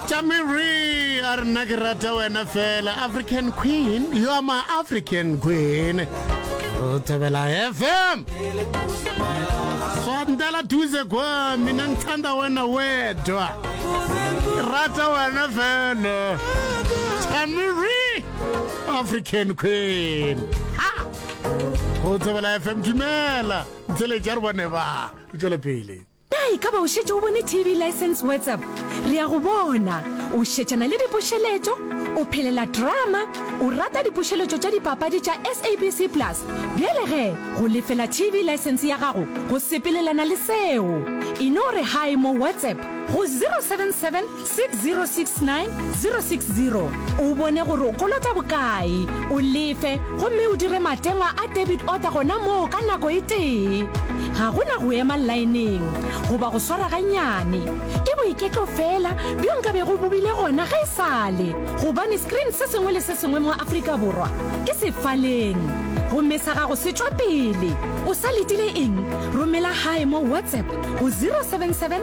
Tšamiri a re nna ke rata wena fela African Queen you are my African Queen re thabela FM swandela duze kwa mina ngithanda wena wedwa rata wena fela Tšamiri African Queen ha go thabela FM dumela ntsele ja re bone ba tswele pele Na e ka ba o šetše o bone TV License WhatsApp? Re a go bona o šetšana le dipušeletšo, o phelela drama, o rata dipušeletšo tša dipapadi tša SABC Plus. Bjale ge go lefela TV License ya gago go sepelelana le seo, e no re hi mo WhatsApp go 077 6069 060 o bone gore o kolota bokae, o lefe gomme o dire matengwa a debit order gona moo ka nako e tee. Ga go na go ema laeneng goba go swara gannyane. Ke boiketlo feela bjo nka bego bo bile gona ge e sa le gobane screen se sengwe le se sengwe mo Afrika Borwa ke sefaleng. Gomme sa gago se tšwa pele. O sa letile eng? Romela gae mo WhatsApp go 077